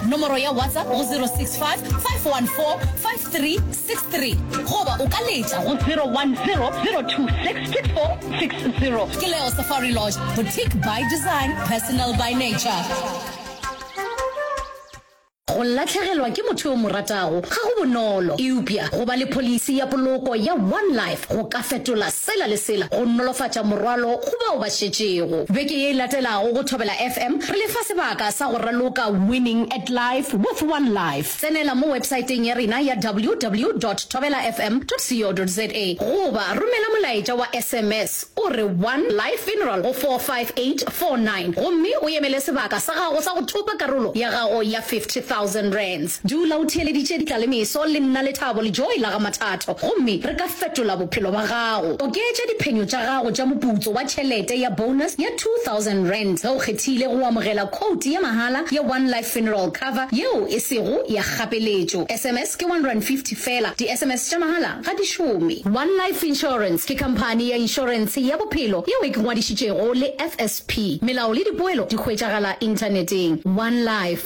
Nomoro ya WhatsApp go 0655145363 goba o ka letša go 0100266460. Ke Leo Safari Lodge, boutique by design, personal by nature. Go latlhegelwa ke motho yo o mo ratago ga go bonolo, eupša go ba le pholisi ya poloko ya One Life go ka fetola Sela le sela go nolofatša morwalo go bao ba šetšego. Beke ye e latelago go Thobela FM re le fa sebaka sa go raloka Winning at Life with One Life. Tsenela mo websaeteng ya rena ya ww dot thobela fm dot co dot za goba romela molaetša wa sms o re One Life Funeral go 45849 gomme o emele sebaka sa gago sa go thopa karolo ya gago ya R50,000. Dula o theeleditše ditlalemeso le nna lethabo le joy la ga Mathatho gomme re ka fetola bophelo ba gago. Oketša diphenyo tša gago tša moputso wa tšhelete ya bonus ya R2000 ge o kgethile go amogela khouti ya mahala ya One Life Funeral Cover yeo e sego ya kgapeletšo. SMS ke R1.50 feela. Di-SMS tša mahala ga di šome. One Life Insurance ke khamphani ya inšorense ya bophelo yeo e kngwadišitšego le FSP. Melao le dipoelo di hwetšagala Inthaneteng. One Life.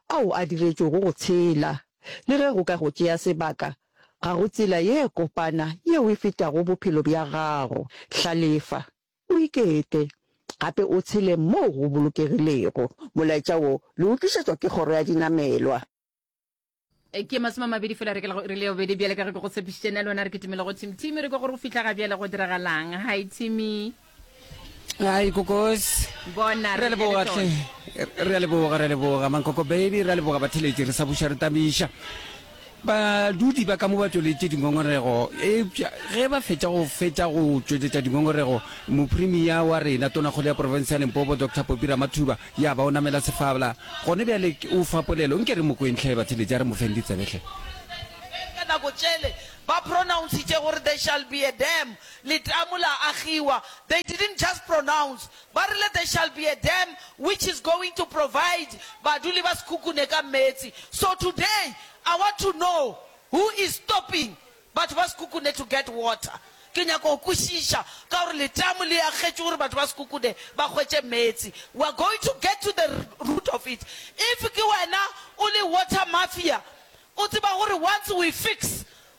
ao a diretšwego go tshela. Le ge go ka go tšea sebaka, ga go tsela ye kopana yeo e fetago bophelo bja gago. Hlalefa, o ikete, gape o tshele moo go bolokegilego. Molaetša wo le o tlišetšwa ke Kgoro ya Dinamelwa. Ke masome a mabedi fela re ke la go iri le yobedi. Bjale ka ge ke go tshepišitše, nna le wena re kitimele go Thimi. Thimi, re kwa gore o fihla ga bjale, go diragalang? Hi, Thimi. Ai kokosi. Bona re leboga tle. Re a leboga re a leboga mankoko baby re a leboga batheletši re sa buša re tabiša. Badudi ba ka mo ba tšweletše dingongorego eupša ge ba fetša go fetša go tšweletša dingongorego mopremia wa rena tonakgolo ya porofense ya Limpopo Dr Popi Ramathuba ya ba o namela sefabla gone bjale o fa polelo nke re mo kwentlhe batheletši a re mo feng ditsebe hle. ka nako tšele ba pronouncitše gore there shall be a dam Letamo la agiwa, they didn't just pronounce, ba rile there shall be a dam which is going to provide baduli ba Sekhukhune ka meetse. So today I want to know who is stopping batho ba Sekhukhune to get water. Ke nyaka go kwešiša ka gore letamo le agetšwe gore batho ba Sekhukhune ba hwetše meetse. We are going to get to the root of it. If ke wena o le water mafia, o tseba gore once we fix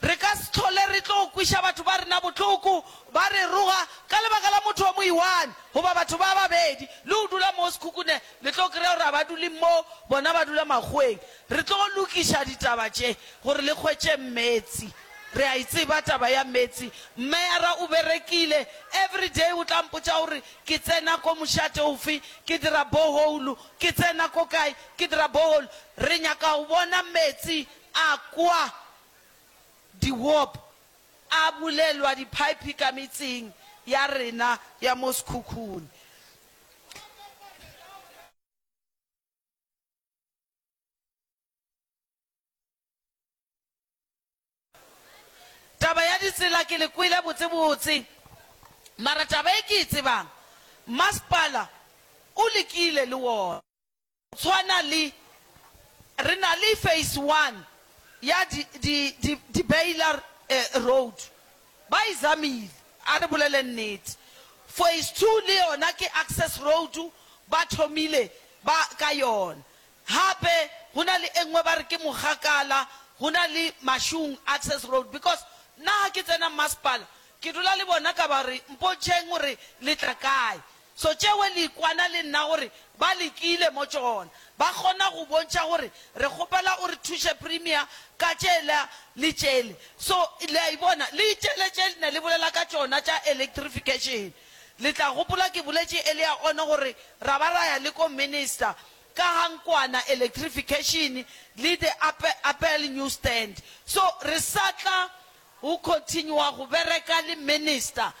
Re ka se hlole re tlo kweša batho ba rena bohloko ba re roga ka lebaka la motho wa mo i-one goba batho ba babedi. Le go dula moo sekhukhune, le tlo kry-a gore ga ba dule moo, bona ba dula makgoweng. Re tlo lokiša ditaba tše gore le hwetše meetse. Re a e tseba taba ya meetse. Mmeyara o berekile, every day o tla mpotša gore ke tsena ko mošate ofe, ke dira borehole, ke tsena ko kae, ke dira borehole. Re nyaka go bona meetse. A kwa di-warp a bulelwa diphaephe ka metseng ya rena ya mo sekhukhung. Taba ya ditsela ke le kwele botsebotse, mara taba e ke e tsebang, masepala o lekile le wona. Tshwana le, re na le Phase One ya di, di, di, di Baylor eh, Road. Ba e zamile, a re boleleng nnete. Phase Two le yona ke Access Road, ba thomile ba ka yona. Hape go na le e nngwe ba re ke Mogakala, go na le Mashung Access Road. Because nna ha ke tsena mmasepala, ke dula le bona ka ba re, Mpontšheng gore le tla kae. So tšewe likwana le nna gore ba likile mo tšona. Ba kgona go bontšha gore re kgopela o re thuše Premier ka tšela le tšele. So, le a e bona, le itšele tše le ne le bolela ka tšona tša electrification. Le tla gopola ke boletše earlier on gore ra ba ra ya le ko Minister ka ga nkwana electrification le the Apple new stand. So, re sa tla go continua go bereka le Minister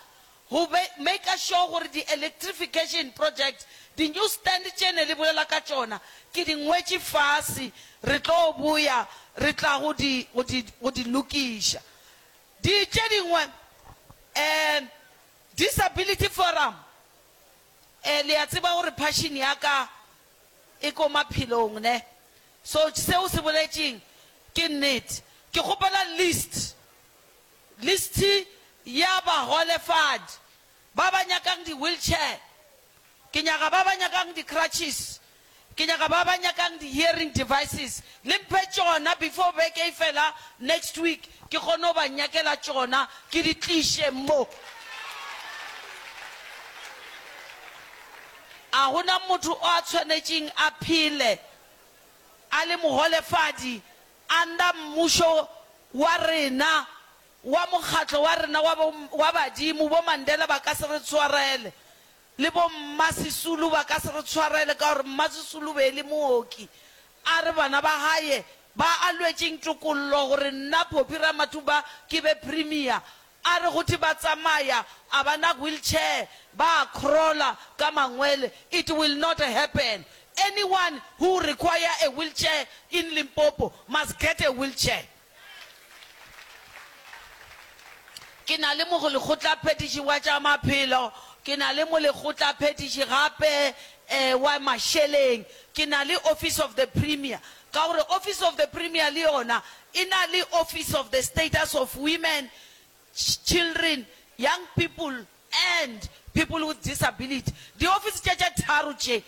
Go maker sure gore di electrification project, di new stand tše ne le bolela ka tšona, ke di ngwetše fase, re tlo boya re tla go di, go di, go di lokiša. Di, tše dingwe, um, Disability Forum, um, le a tseba gore passion ya ka e ko maphelong ne, so seo se boletšeng ke nnete. Ke kgopela list. Listi ya bagolefadi ba ba nyakang di-wheelchair, ke nyaka ba ba nyakang di-crutches, ke nyaka ba ba nyakang di-hearing devices. Le mphe tšona before beke e fela next week, ke kgone go ba nyakela tšona ke di tliše mo. A go na motho o a tshwanetšeng a phele a le mogolefadi? Anda mmušo wa rena, wa mokgatlo wa rena wa bo, wa badimo, bo Mandela ba ka se re tshwarele, le bo Mma Sisulu ba ka se re tshwarele, ka gore Mma Sisulu be e le mooki, a re bana ba gaye ba a lwetšeng tokollo, gore nna Poppy Ramathuba ke be Premier, A re gotee ba tsamaya a ba na wheelchair, ba a crawler ka mangwele, it will not happen. Anyone who require a wheelchair in Limpopo must get a wheelchair. Ke na le mogolekgotlaphethiši wa tša maphelo, ke na le molekgotlaphethiši gape wa mašeleng, ke na le office of the premier, Ka gore Office of the Premier le yona e na le Office of the Status of Women, Children, Young People and People with Disability. Diofisi tša tše tharo tše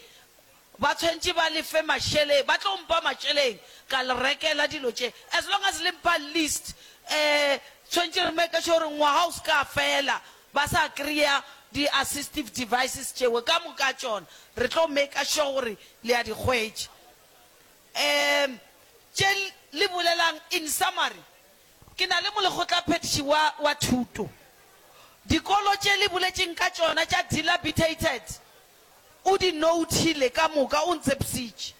ba tshwentše ba le fe mašeleng, ba tlo mpha mašeleng ka le rekela dilo tše. As long as le mpha list, eh, tshwentše re make sure gore ngwaga o se ka fela ba sa kry-a di assistive devices tšeo ka moka tšona. Re tlo make sure gore le a di hwetša. um tše li bolelang, in summary, ke na le molekgotlaphethiši wa, wa thuto. Dikolo tše li boletšeng ka tšona tša dilapidated o di nouthile ka moka, o ntsepsitše.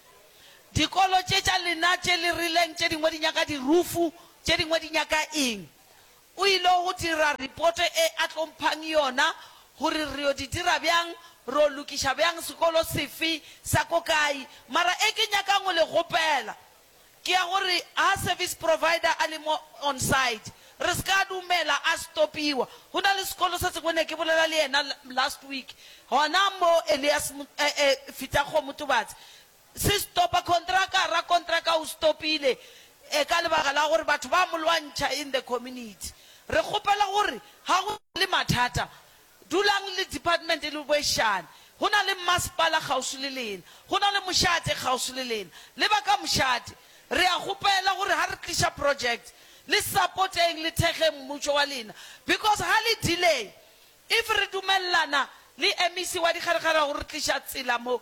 Dikolo tše tša lena tše li rileng tše dingwe di nyaka dirufu, tše dingwe di nyaka eng. O ilo go dira ripoto e a tlo mphang yona gore re yo di dira bjang, ro lokiša bjang, sekolo sefe sa ko kae. Mara e ke nyakang go le kgopela ke ya gore ha service provider a le mo on side re se ka dumela a stopiwa. Go na le sekolo se sengwe ne ke bolela le yena last week hona mo Elias Fitha Kgomo Tobatse Se stopa kontraka, rakontraka o stopile e ka lebaka la gore batho ba mo lwantšha in the community. Re kgopela gore ga go na le mathata, dulang le department le boešane. Go na le mmasepala kgauswi le lena, go na le mošate kgauswi le lena, le ba ka mošate. Re a kgopela gore ga re tliša project, le support-eng le thekgeng mmutšo wa lena because ga le delay, if re dumelelana le MEC wa Dikgarekgare gore re tliša tsela mo,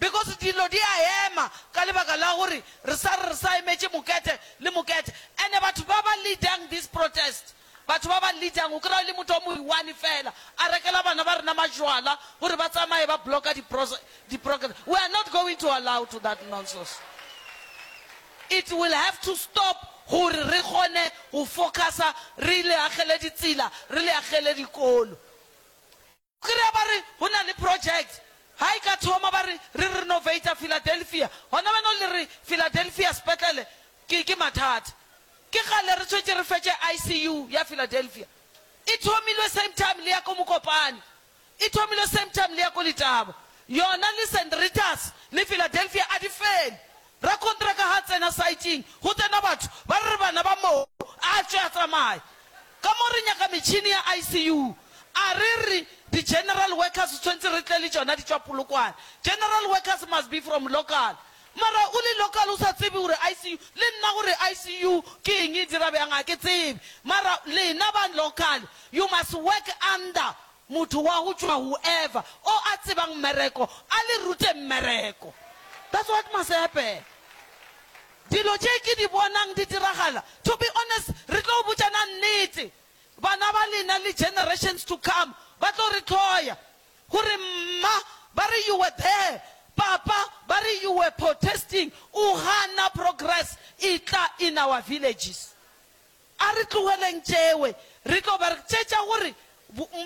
Because dillo di a ema ka lebaka la gore re sa re re sa emetše Mokethe le Mokethe. And batho ba ba leadang this protest, batho ba ba leadang, o kry-a e le motho o mo one fela a rekela bana ba rena majwala gore ba tsamaye ba blocka di di program. We are not going to allow to that nonsos. It will have to stop gore re kgone go focusa re le agele ditsela, re le agele dikolo. Kry-a ba re go na le project ha e ka thoma ba re re renovater Philadelphia gona wena o le re Philadelphia sepetlele ke ke mathata. Ke kgale re tshwetše re fetše ICU ya Philadelphia. E thomilwe same time le ya ko Mokopane. E thomilwe same time le ya ko Letaba. Yona le St Rita's le Philadelphia a di fele. Rakontraka ga a tsena saeteng, go tsena batho, ba re re bana ba moo, a tšwe a tsamaye. Ka mo re nyaka metšhini ya ICU. A re re, di-general workers tshwentse re tle le tšona di tšwa Polokwane. General workers must be from local. Mara o le local o sa tsebe gore ICU, le nna gore ICU ke eng e dira bjang ga ke tsebe. Mara lena ba local, you must work under Motho wa go tšwa whoever o a tsebang mmereko a le rute mmereko. That's what must happen. Dilo tše ke di bonang di diragala, to be honest re tlo botšana nnete, bana ba lena le generations to come ba tlo re hloya gore mma ba re you were there, papa ba re you were protesting, o gana progress e tla in our villages. A re tlogeleng tšewe. Re tlo ba re tšetša gore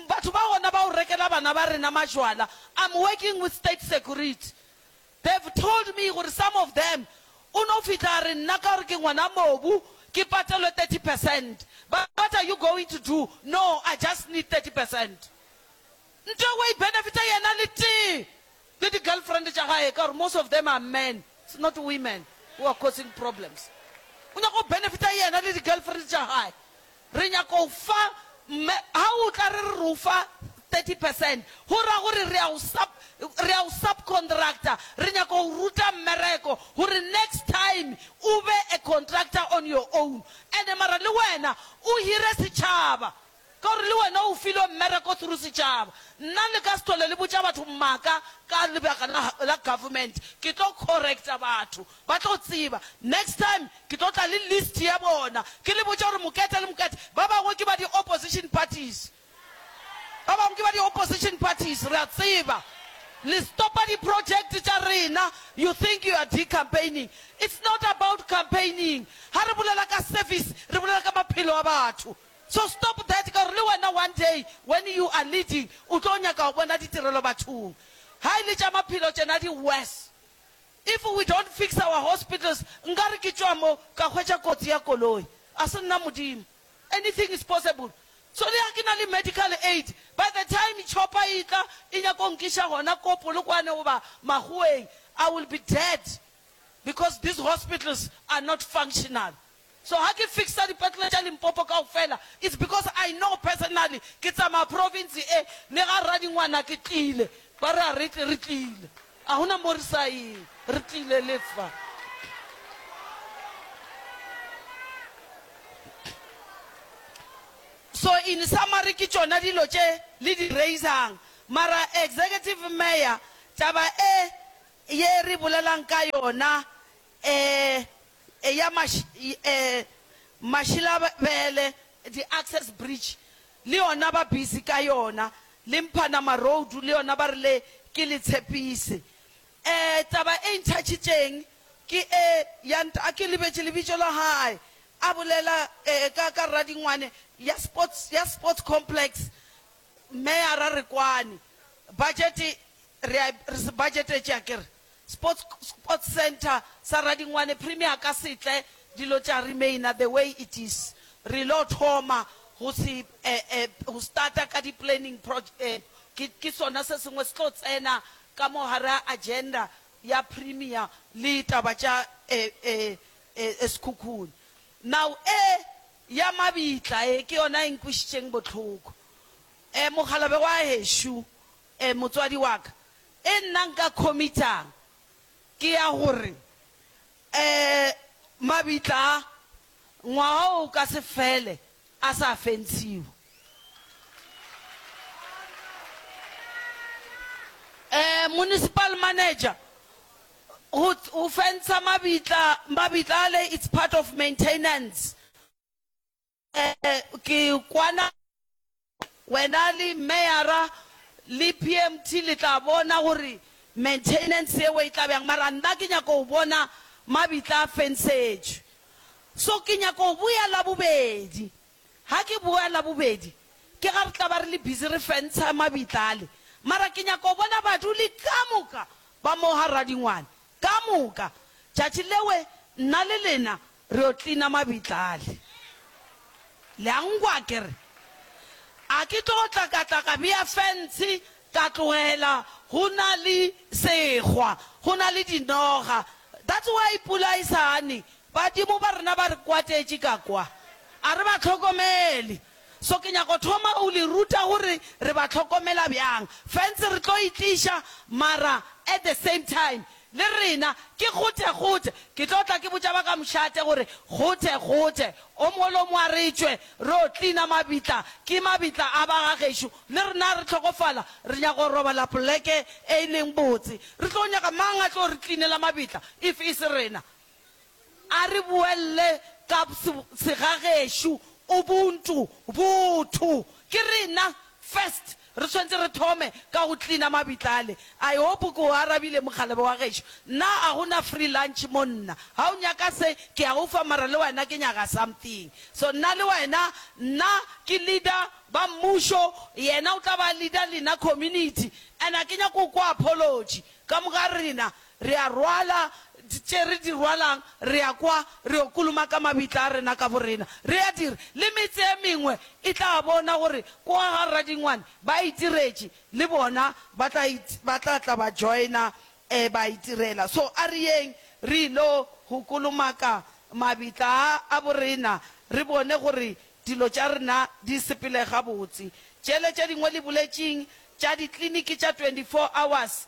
batho ba gona ba o rekela bana ba rena majwala. I'm working with state security. They've told me gore some of them o no fihla a re nna ka gore ke ngwana mobu ke patelwe thirty percent. Ba re what are you going to do? No, I just need thirty percent. Nto eo wa ibenefita yena le tee le di girlfriend tša gae ka gore most of them are men it's not women who are causing problems o nyaka go benefita yena le di girlfriend tša gae re nyaka go fa mme ha o tla re re re o fa 30 percent go ra gore re ya go sub re ya go subcontractor re nyaka go ruta mmereko gore next time o be a contractor on your own and mara le wena o hire setšhaba Ka gore le wena o filwe mmereko through setšhaba. Nna le ka se tlhole le botša batho maaka ka lebaka la la government. Ke tlo correcta batho ba tlo tseba. Next time ke tlo tla le list ya bona ke le botša gore Mokete le Mokete ba bangwe ke ba di opposition parties. Ba bangwe ke ba di opposition parties. Re a tseba le stopa di project tša rena. You think you are decampaigning. It's not about campaigning. Ha re bolela ka service re bolela ka maphelo a batho. So stop that ka gore le wena one day when you are leading o tlo nyaka go bona ditirelo bathong. Ha e le tša maphelo tšena di worse. If we don't fix our hospitals nkare ke tšwa mo ka hwetša kotsi ya koloi. A se nna Modimo. Anything is possible. So le ha ke na le medical aid by the time chopper e tla e nyaka go nkiša gona ko Polokwane goba Makgoweng I will be dead because these hospitals are not functional. So ha ke fixer dipetlele tša Limpopo kaofela it's because I know personally ke tsamaya province e le ga rra dingwana ke tlile ba re a re tle re tlile a hona mo re sa yeng re tlile le fa So in summary ke tšona dilo tše le di raisang mara Executive Mayor taba e ye re bolelang ka yona Ee, eya maš, ee, Mašilabele, di access bridge le yona ba busy ka yona, le Mphanama road le yona ba rile ke le tshepise. Ee, taba e ntšhatšitšeng ke e ya nta, ke lebetše lebitšo la hae, a bolela ee, ka, ka Radingwane, ya sports, ya sports complex, Meyara Rekwane, budget re a, re se budgetetše akere. Sports Sports Centre sa Radingwane Premier ka setle dilo tša remainer the way it is re lo thoma go se eh eh go starta ka di planning proj eh ke ke sona se sengwe se tlo tsena ka mo gare ga agenda ya Premier le taba tša eh eh eh Sekhukhune now eh ya mabitla eh ke yona e nkwišitšeng bohloko eh mokgalabje wa hešo E, motswadi wa ka, e nna nka khomitšang ke ya gore, e, mabitla a, ngwaga o ka se fele a sa fensiwa. E, municipal manager, go, go fensa mabitla, mabitla ale, it's part of maintenance. Ee, ke kwana. Wena le meyara le PMT le tla bona gore maintenance yeo e tla bjang, mara nna ke nyaka go bona mabitla a fensetšwe. So ke nyaka go boya Labobedi. Ga ke boya Labobedi, ke ga re tla ba re le busy re fentsha mabitla ale. Mara ke nyaka go bona baduli ka moka ba mo ga Radingwane, ka moka. Tšatši leo nna le lena Re yo cleaner mabitla ale. Le a nkwa ke re? A ke tlo go tlakatlaka bea fence ka tlogela go na le segwa, go na le dinoga. That's why pula e sa ne. Badimo ba rena ba re kwatetše ka kwa. A re ba hlokomele. So ke nyaka go thoma go le ruta gore re ba hlokomela bjang. Fence re tlo e tliša mara at the same time Le rena, ke kgothekgothe. Ke tlo tla ke botša ba ka mošate gore, Kgothekgothe, o molomo a re tšwe, re o klina mabitla. Ke mabitla a ba ga gešo. Le rena a re hlokofala, re nyaka go robala poleke e e leng botse. Re tlo nyaka mang a tlo re klinela mabitla if e se rena? A re boelele ka segagešo, Ubuntu, botho. Ke rena, first, re swanetše re thome ka go cleaner mabitla ale. I hope ke o arabile, mokgalabje wa gešo. Nna a go na free lunch mo nna. Ha o nyaka se, ke a o fa, mara le wena ke nyaga something. So nna le wena, nna ke leader ba mmušo, yena o tla ba leader lena community. And a ke nyake go kwa apology ka moga rena, Re a rwala tše re di rwalang, re ya kwa, re yo kolomaka mabitla a rena ka borena. Re a dira. Le metse e mengwe e tla bona gore kwa ga Radingwane ba itiretše, le bona ba tla, ba tla tla ba joina, um, ba itirela. So a re yeng re il'o go kolomaka mabitla a, a borena, re bone gore dilo tša rena di sepele gabotse. Tšele tše dingwe le boletšeng tša dikliniki tša 24 hours,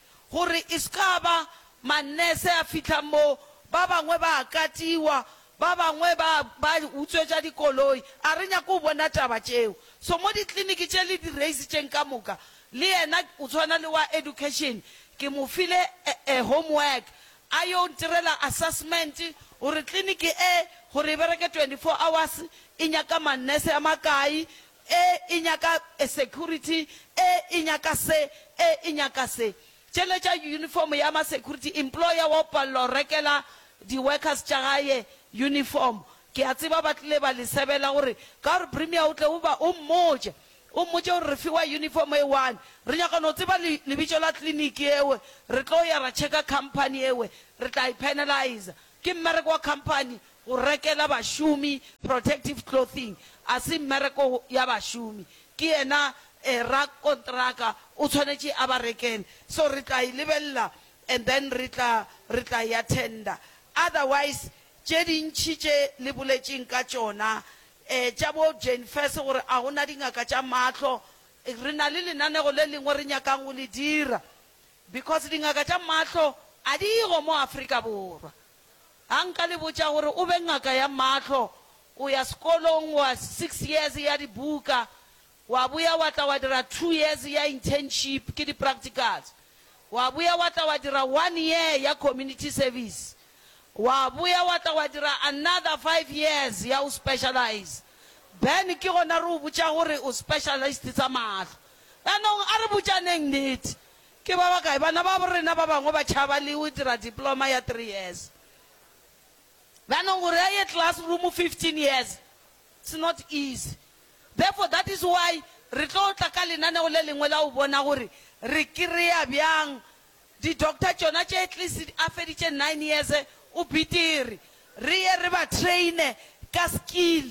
Gore e se ka ba mannese a fihla mo, ba bangwe ba a katiwa, ba bangwe ba, ba utswetša dikoloi. A re nyake go bona taba tšeo. So mo dikliniki tše le di-raise tšeng ka moka, le yena o tshwana le wa education, ke mo file e, e homework, a yo ntirela assessment, gore kliniki e, gore e bereke 24 hours, e nyaka mannese a makae, e e nyaka security, e e nyaka se, e e nyaka se. Tšele tša uniform ya ma security, employer wa o palela go rekela di workers tša gae uniform. Ke a tseba ba tlile ba le sebela gore ka gore Premier o tle o ba, o mmotše, o mmotše gore re fiwa uniform e one, re nyaka no tseba le, lebitso la clinic yeo, re tlo ya ra checker company yeo, re tla e penaliser. Ke mmereko wa company Go rekela bašomi protective clothing a se mmereko ya bašomi, ke yena rakontraka o tshwanetše a ba rekele. So re tla e lebelela and then re tla re tla ya tender. Otherwise tše dintši tše le boletšeng ka tšona tša bo Jane Fess gore a go na dingaka tša mahlo, re na le lenanego le lengwe re nyakang go le dira because dingaka tša mahlo a di go mo Afrika Borwa. A nka le botša gore o be ngaka ya mahlo, o ya sekolong wa six years ya dibuka, wa boya wa tla wa dira two years ya internship, ke di-practicals, wa boya wa tla wa dira one year ya community service, wa boya wa tla wa dira another five years ya go specialize, then ke gona re go botša gore o specialist tsa mahlo. Yanong a re botšaneng nnete, Ke ba bakae bana babo rena ba bangwe ba tšhaba le o dira diploma ya three years? Yanong gore a ye classroom fifteen years, it's not easy. Therefore that is why re tlo tla ka lenaneo le lengwe la go bona gore re kry-a bjang di-doctor tšona tše at least a feditše nine years o betere, re ye re ba train-e ka skill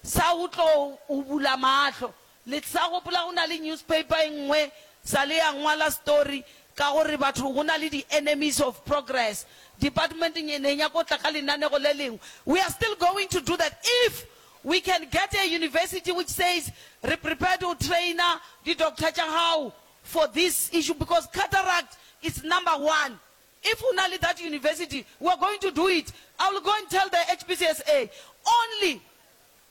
sa go tlo go bula mahlo Le sa gopola go na le newspaper e nngwe sa le ya ngwala story ka gore batho go na le di enemies of progress department e ne nyako tla ka lenanego le lengwe we are still going to do that if we can get a university which says re prepared go traina di doctor tša gago for this issue because cataract is number one if go na le that university we are going to do it I will go and tell the HPCSA only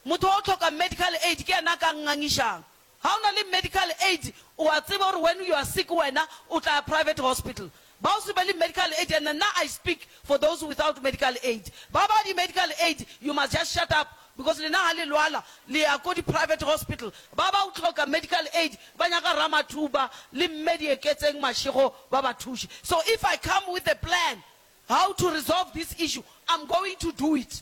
Motho wa go hloka medical aid ke yena a ka ngangišang. Ga o na le medical aid, o a tseba gore when you are sick wena o tla ya private hospital. Ba o se be le medical aid, and nna I speak for those without medical aid. Ba ba di medical aid, you must just shut up because lena ga le lwala le ya ko di private hospital. Ba ba o hloka medical aid ba nyaka Ramathuba le Mme Dieketseng Mashego ba ba thuše. So if I come with a plan how to resolve this issue, I'm going to do it.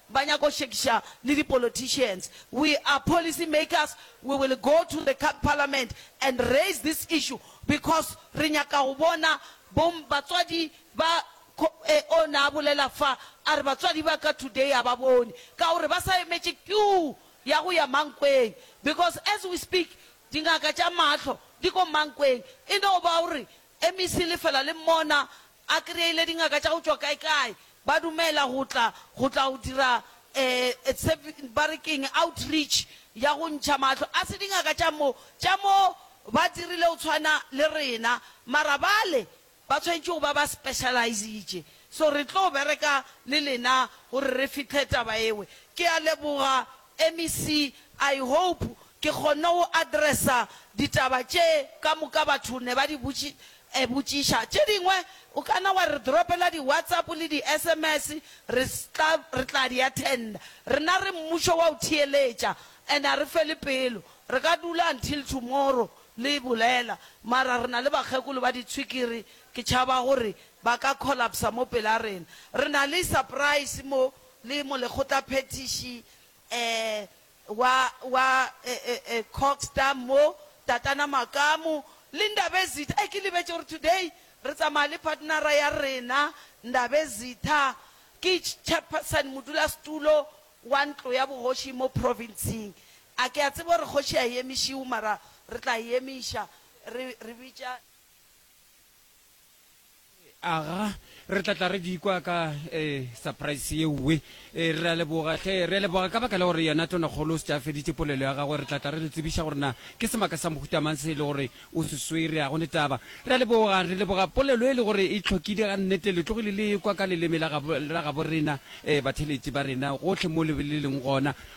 ba nyaka go šekiša le di politicians, we are policy makers, we will go to the parliament and raise this issue because re nyaka go bona bo batswadi ba on a bolela fa a re batswadi ba ka today a ba bone ka gore ba sa emetše queue ya go ya Mankweng because as we speak dingaka tša mahlo di ko Mankweng e no ba o re MEC lefela le mmona A kry-ile dingaka tša go tšwa kae-kae, ba dumela go tla, go tla go dira um ba re ke'ng, outreach ya go ntšha mahlo. A se dingaka tša mo, tša mo ba dirile go tshwana le rena, mara bale ba tshwanetše go ba ba specialize-itše. So re tlo bereka le lena gore re fihle taba ewe. Ke a leboga MEC, I hope ke kgonne go addressa ditaba tše ka moka batho ne ba di botšiša. Tše dingwe o ka na wa re dropela di WhatsApp le di sms re re tla di attenda. Rena re mmušo wa go theeletša and ga re fele pelo. Re ka dula until tomorrow le e bolela mara re na le bakgekolo ba ditshwikiri ke tšhaba gore ba ka collapsa mo pela rena. Re na le surprise mo le molekgotlaphethiši wa wa Cogstar mo, Tatana Makamu, le Ndabezitha. Ee, ke lebetše gore today re tsamaya le partnera ya rena Ndabezitha, ke chairperson, modulasetulo wa ntlo ya bogoši mo province-ng. A ke a tseba gore kgoši a e emišiwe mara re tla e emiša re re bitša. Aga, re tla tla re di kwa ka eh, surprise ye uwe. Eh, re a leboga, hle, re a leboga ka baka la gore yena tonakgolo o se tša feditše polelo ya gagwe. Re tla tla re le tsebiša gore na ke semaka sa mohuta mang se e le gore o se swere. A go ne taba. Re a leboga, re leboga polelo e le gore e hlokile ga nnete. Le tlogile le kwa ka leleme la gabo, la gabo rena, eh, batheletši ba rena, gohle mo le, le leng gona.